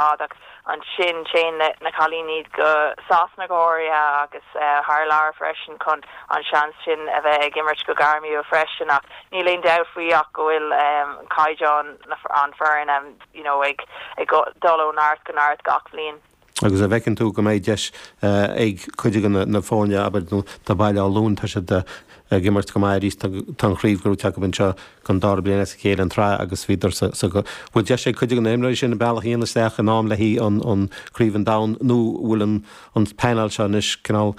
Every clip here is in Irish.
fad agus ansin téann na cailíní go Sasana go háirithe agus thar lear freisin chun an seans sin a bheith ag imirt go gairmiúil freisin ach níl aon dabht faoi ach go bhfuil caighdeán an fhoireann you know ag ag dul ó neart go neart gach bhliain. Agus an bhfeiceann tú go mbeidh deis ag cuid de na himreoirí abair de Bhaile Átha Luain tá siad ag imirt go maith arís. Tá an chraobh gnóthaithe acu anseo don dara bliain as a chéile an tsraith agus b'fhéidir sa Bhfuil deis ag cuid de na himreoirí sin a mbealach a dhéanamh isteach in am le haghaidh Craobh an Domhain nó bhfuil an an painéal seo anois cineál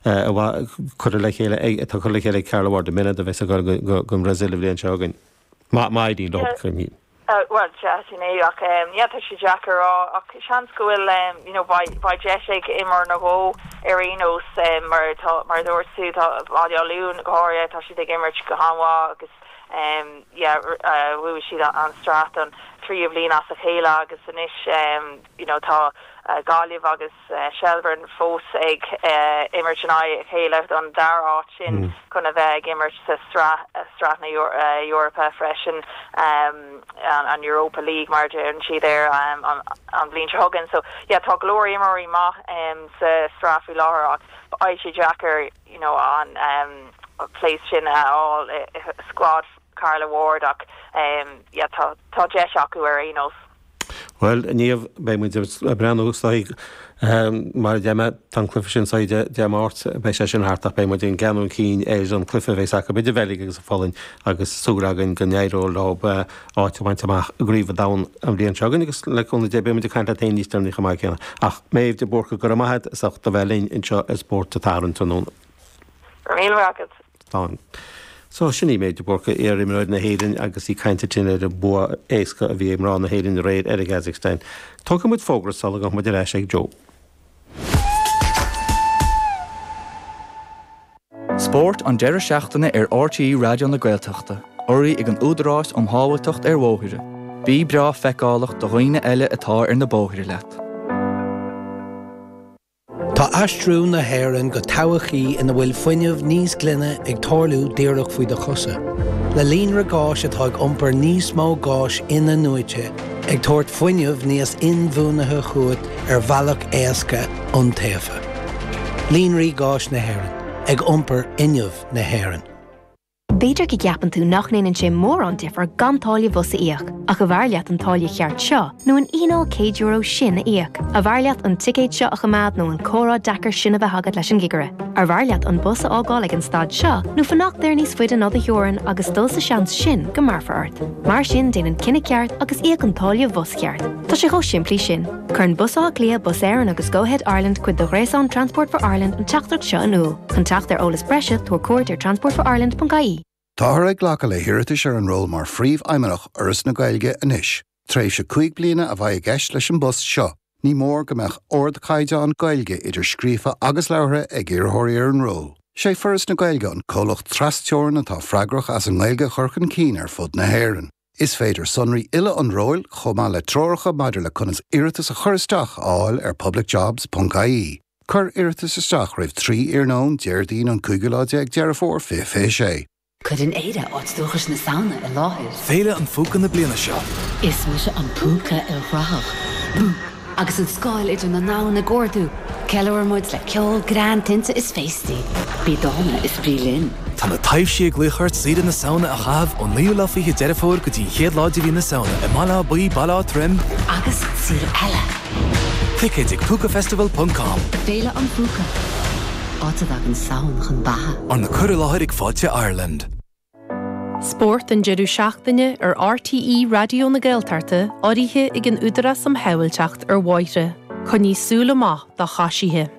curtha le chéile atá curtha le chéile ag Carla Ward an mbeidh siad in ann a bheith ag gabháil don Bhrasaíl an bhliain seo chugainn? Maidin, lucht cruinnithe. Bhuel, sea, sin é, ach yeah, tá sé deacair a rá, ach seans go bhfuil, you know, beidh deis ag imreoir nó dhó ar aon nós, mar tá, mar a dúirt tú, tá Baile Átha Luain, go háirithe, tá siad ag imirt go han-mhaith agus, yeah, bhuaigh siad an sraith an tríú bhliain as a chéile agus anois, you know, tá Gaillimh agus Shelbourne fós ag imirt in aghaidh a chéile don dara háit sin chun a bheith ag imirt sa sraith sraith na Eorpa freisin an Europa League mar a deireann siad air an bhliain seo chugainn so yeah tá go leor imreoirí maith sa sraith faoi láthair ach beidh sé deacair you know an place sin a fháil i squad Carla Ward ach yeah tá deis acu ar aon nós. Bhuel, a Mhéabh, beidh muid ag breathnú air siúd. Mar a deir mé, tá an cluiche sin oíche Dé Máirt, beidh sé sin thart ach beidh muid ag breathnú chun cinn ar an gcluiche a bheas acu idir an Bheilg agus an Pholainn agus súil againn go n-éireoidh leo áit a bhaint amach i gCraobh an Domhain an bhliain seo chugainn agus le cúnamh Dé beidh muid ag caint leat féin níos deireanaí chomh maith céanna. Ach Méabh de Búrca, go raibh maith agat as ucht a bheith linn anseo ar Spórt an tSathairn tráthnóna. Míle maith agat. ann. So, sin í Méabh de Búrca, iar-imreoir na hÉireann agus í ag caint linn ar an mbua éasca a bhí ag mná na hÉireann aréir ar an gCasacstáin. Tógfaidh muid fógra sula ngabhfaidh muid ar ais ag Joe. Spórt an deireadh seachtaine ar RTÉ Raidió na Gaeltachta, urraithe ag an Údarás um Shábháilteacht ar Bhóithre. Bí breá feiceálach do dhaoine eile atá ar na bóithre leat. Tá aistriú na hÉireann go todhchaí ina bhfuil fuinneamh níos glaine ag tarlú díreach faoi do chosa. Le líonra gáis atá ag iompar níos mó gáis in-athnuaite, ag tabhairt fuinneamh níos inbhuanaithe chugat ar bhealach éasca, iontaofa. Líonraí Gáis na hÉireann, ag iompar fhuinneamh na hÉireann. B'fhéidir go gceapann tú nach ndéanann sé mórán difear gan táille bhus a íoc, ach arbh fhearr leat an táille cheart seo nó an fhíneáil €100 sin a íoc? Arbh fhearr leat an ticéad seo a choimeád nó an comhrá deacair sin a bheith agat leis an gcigire? Arbh fhearr leat an bus a fhágáil ag an stad seo nó fanacht air níos faide ná do theorainn agus dul sa seans sin go mbéarfar ort? Mar sin déan an cinneadh ceart agus íoc an táille bhus cheart. Tá sé chomh simplí sin. Cuireann Bus Átha Cliath, Bus Éireann agus Go-Ahead Ireland cuid de ghréasán Transport for Ireland an teachtaireacht seo in iúl. Chun teacht ar eolas breise, tabhair cuairt ar transportforireland.ie. Táthar ag glacadh le hiarratais ar an ról mar Phríomhfheidhmeannach Fhoras na Gaeilge anois. Tréimhse cúig bliana a bheidh i gceist leis an bpost seo. Ní mór go mbeadh ardchaighdeán Gaeilge, idir scríofa agus labhartha, ag iarrthóirí ar an ról. Is é Foras na Gaeilge an comhlacht tras-Teorann atá freagrach as an nGaeilge a chur chun cinn ar fud na hÉireann. Is féidir sonraí uile an róil, chomh maith le treoracha maidir le conas iarratas a chur isteach, a fháil ar publicjobs.ie. Cuir iarratas isteach roimh 3 iarnóin Déardaoin an cúigiú lá déag Deireadh Fómhair 2026. Cuireann Éire, áit dúchais na Samhna i láthair Féile an Phúca na bliana seo. Is mise an Púca Ilchruthach. Bú! Agus an scáil idir na domhain ag ardú, ceiliúraimid le ceol, greann, tinte is féastaí. Bí dána is bí linn! Tá na taibhsí ag glaoch ort saoire na Samhna a chaitheamh ón 9ú lá 20 Deireadh Fómhair go dtí an 1ú lá de mhí na Samhna i mBaile Átha Buí, Baile Átha Troim, agus saol eile! Ticéid ag Púcafestival ponc com. Féile an Phúca, áit a dtagann Samhain chun beatha. Arna cur i láthair ag Fáilte Ireland. Spórt an deireadh seachtaine ar RTÉ Raidió na Gaeltachta, urraithe ag an Údarás um Shábháilteacht ar Bhóithre. Coinnigh súil amach do choisithe.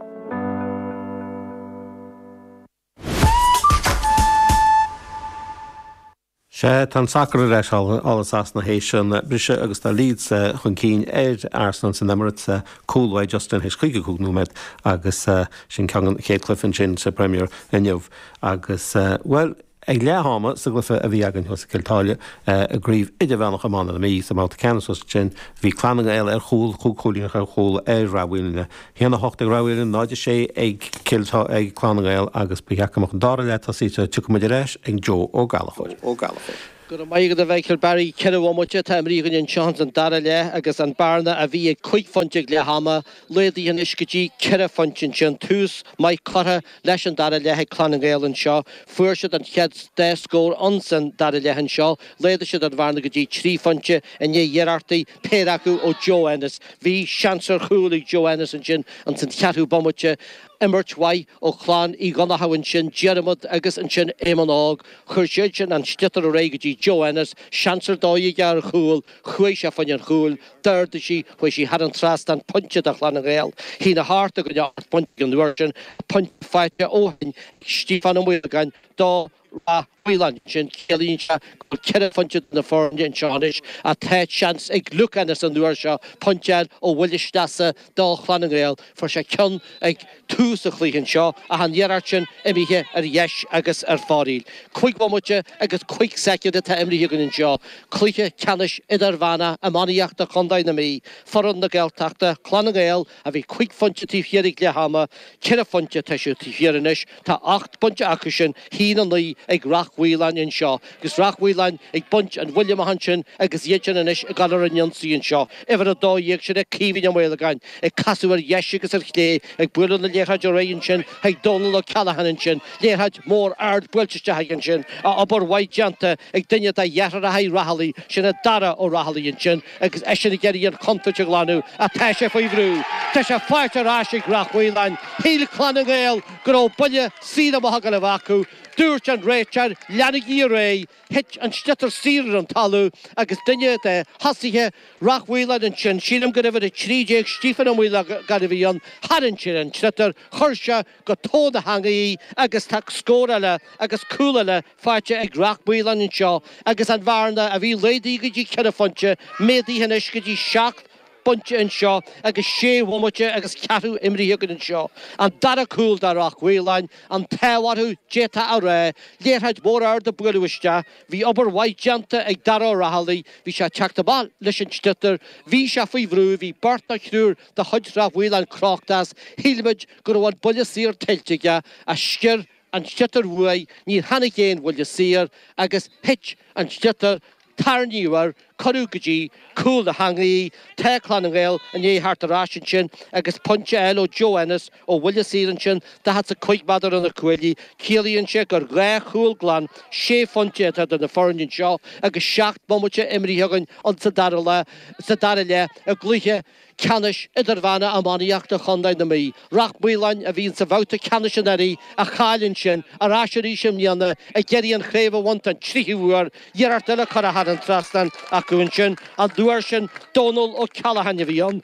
Sea, tá an sacar ar ais thall i Sasana théis an briseadh agus tá Leeds chun cinn ar Arsenal san Emirates. Cúl ó Justin théis 55 nóiméad agus sin agaibh an chéad chluiche ansin sa Premier inniu. Agus, bhuel, ag leath ama, sa gcluiche a bhí againn thuas i gCill Táile, i gCraobh Idirmheánach Iomána na Mí, sa mbabhta ceannais thuas ansin, bhí Clann na nGael ar chúl, cúig chúilín ar chúl ar Ráth Moliain, 1, 8 ag Ráth Moliain, 0, 6 ag Cill Táile, ag Clann na nGael agus ba cheart go mbeadh an dara leath tosaithe, gabhfaidh muid ar ais ag Joe Ó Gallachóir. Go raibh maith agat a Mhichíl, bhuel, ceithre bhomaite atá imrithe againn anseo ins an dara leath agus an bearna a bhí ag cúig phointe ag leath ama, laghdaithe anois go dtí ceithre phointe ansin. Tús maith curtha leis an dara leath ag Clann na nGael anseo, fuair siad an chéad dá scór ann san dara leath anseo, laghdaigh siad an bhearna go dtí trí phointe i ndiaidh iarrachtaí, péire acu ó Joe Ennis. Bhí seans ar chúl ag Joe Ennis ansin ins an cheathrú bomaite, imirt mhaith ó Chlann Uí Dhonnchadha ansin, Diarmuid agus ansin Éamonn Óg, chuir siadsan an sliotar ar aghaidh go dtí Joe Ennis, seans ar dóigh aige ar chúl, chuaigh sé fá choinne an chúil. D'ardaigh sí, chuaigh sí thar an trasnán pointe do Chlann na nGael. A haon a hocht i gcoinne ocht bpointe an uair sin, pointe faighte ó shin ag Stíofán Ó Maolagáin do Rath Mhaoláin. Sin ciallaíonn sé go bhfuil ceithre phointe idir na foirne anseo anois ach tá seans ag Luke Ennis an uair seo pointe a fháil ó bhuille sleasa do Chlann na nGael. Fuair sé ceann ag tús an chluiche anseo ach an iarracht sin imithe ar dheis agus ar fóraoil. Cúig bhomaite agus cúig soicind atá imrithe againn anseo. Cluiche ceannais Idirmheánach Iománaíochta Chondae na Mí, foireann na Gaeltachta, Clann na nGael, a bhí cúig phointe taobh thiar ag leath ama. Ceithre phointe atá siad taobh thiar anois. Tá ocht bpointe acusan, a haon a naoi ag Rath Mhaoláin anseo agus Rath Mhaoláin ag baint an bhuille amach ansin agus iadsan anois ag dul ar an ionsaí anseo. Uimhir a dó dhéag sin é Caoimhín Ó Maolagáin ag casadh ar dheis agus ar chlé, ag bualadh na liathróide ar aghaidh ansin chuig Dónal Ó Ceallacháin ansin, liathróid mhór ard buailte isteach aige ansin, obair mhaith déanta ag duine de dheartháireacha Ó Rathallaigh, sin é Dara Ó Rathallaigh ansin, Agus eisean ag iarraidh an chontúirt a ghlanadh ach tá sé faoi bhrú, tá sé faighte ar ais ag Rath Mhaoláin. Shíl Clann na nGael go raibh buille saor amach ag dul a bheith acu. Dúirt an réiteoir, Leanaigí ar aghaidh! Thit an sliotar saor ar an talamh agus duine de thosaithe Rath Mhaoláin ansin, sílim gurbh uimhir 13 Stiofán Ó Maolagáin a bhí ann, tharraing sé an sliotar, chuir sé go tóin na heangaí í agus tá scór eile agus cúl eile faighte ag Rath Maoláin anseo agus an bhearna a bhí laghdaithe go dtí ceithre phointe, méadaithe anois go dtí seacht bpointe anseo agus sé bhomaite agus ceathrú imrithe againn anseo. An dara cúl do Rath Mhaoláin an t-ádh orthu, d'fhéadfá a rá. Liathróid mhór ard a buaileadh isteach. Bhí obair mhaith déanta ag Dara Ó Rathallaigh, bhí sé ag teacht amach leis an sliotar, bhí sé faoi bhrú, bhí beirt nó triúr de chuid Rath Mhaoláin crochta as, shíl muid go raibh an buille saor tuillte aige, ach sciorr an sliotar uaidh, níor tháinig aon bhuille saor agus thit an sliotar, tarraingíodh air, cuireadh go dtí cúl na heangaí, tá Clann na nGael i ndiaidh theacht ar ais ansin agus pointe eile ó Joe Ennis ó bhuille saor ansin, daichead 's a cúig méadar ó na cuaillí. Ciallaíonn sé gur dhá chúl glan sé phointe atá idir na foirne anseo agus seacht mbomaite imrithe againn insa dara leath, sa dara leath i gcluiche ceannais idirmheánach iománaíochta chontae na Mí, Rath Maoláin, a bhí insa bhabhta ceannais anuraidh a chaill ansin, ar ais arís i mbliana ag iarraidh an chraobh a bhaint don tríú huair, iarracht eile curtha thar an trasnán acu ansin, an uair sin Dónal Ó Ceallacháin a bhí ann.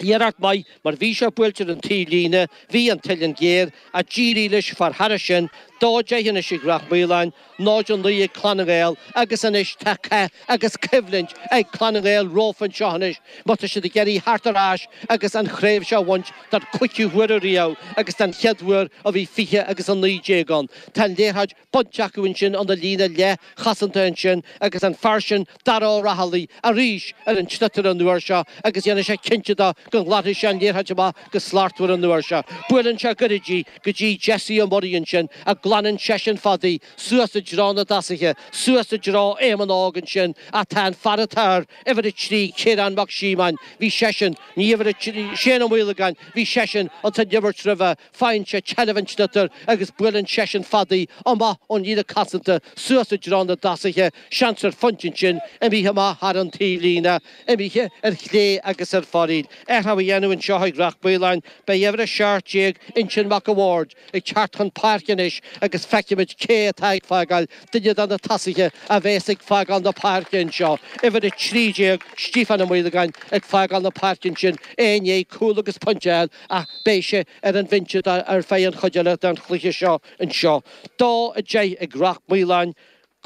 Iarracht mhaith mar bhí sé buailte ar an taobhlíne, bhí an t-uillinn géar, ach d'éirigh leis fear thairis sin, dó deich anois ag Rath Maoláin, náid a naoi ag Clann na nGael agus anois tá cath agus coimhlint ag Clann na nGael rompu anseo anois má tá siad ag iarraidh theacht ar ais agus an chraobh seo a bhaint don chúigiú huair ariamh agus don chéad uair ó bhí 20 agus 19 ann. Tá an liathróid bainte acu ansin ina líne leathchosanta ansin agus an fear sin Dara Ó Rathallaigh arís ar an sliotar an uair seo agus déanfaidh sé cinnte de go nglanfaidh sé an liathróid amach go slachtmhar an uair seo. Buaileann sé goirid í go dtí Jessie Ó Muirí ansin a glanann seisean fada í suas i dtreo na dtosaithe, suas i dtreo Éamonn Óg ansin ach tá an fear atá ar uimhir a trí, Ciarán Mac Síomóin, bhí seisean, ní uimhir a trí, Shane Ó Maolagáin, bhí seisean insan imirt roimhe. Faigheann sé seilbh an tsliotair agus buaileann seisean fada í amach ón líne chosanta suas i dtreo na dtosaithe, seans ar phointe ansin, imithe amach thar an taobhlíne, imithe ar chlé agus ar foraíl. Athrach á dhéanamh anseo ag Rath Maoláin, beidh uimhir 17, Uinseann Mac a' Bhaird, ag teacht chun páirce anois agus feicfimid cé atá ag fágáil, duine de na tosaithe a bheas ag fágáil na páirce anseo, uimhir 13, Stiofán Ó Maolagáin, ag fágáil na páirce ansin, é i ndiaidh cúl agus pointe a fháil ach beidh sé ar an bhinse ar feadh an chuid eile den chluiche seo anseo. Dó a deich ag Rath Maoláin,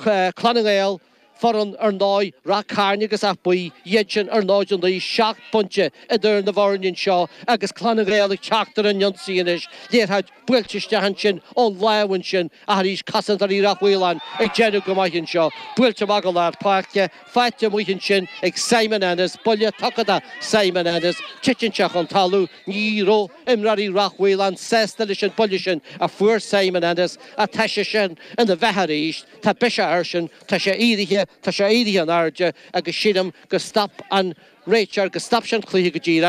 Clanna nGael, foireann, ar ndóigh, Rath Cairn agus Áth Buí, iad sin ar ndóigh de dhíth, seacht bpointe idir na bhfoirne anseo agus Clanna nGael ag teacht ar an ionsaí anois. Buailte isteach ansin ón láimh ansin ach arís cosantóirí Rath Mhaoláin ag déanamh go maith anseo. Buailte amach go lár páirce, faighte amuigh ansin ag Simon Ennis, buille tugtha do Simon Ennis, titeann sé chun talamh. Ní raibh imreoirí Rath Mhaoláin sásta leis an buille sin a fuair Simon Ennis ach tá seisean ina bheatha arís. Tá biseach airsean, tá sé éirithe, tá sé éirithe in airde agus sílim go stop an réiteoir, go stop sé an cluiche go díreach.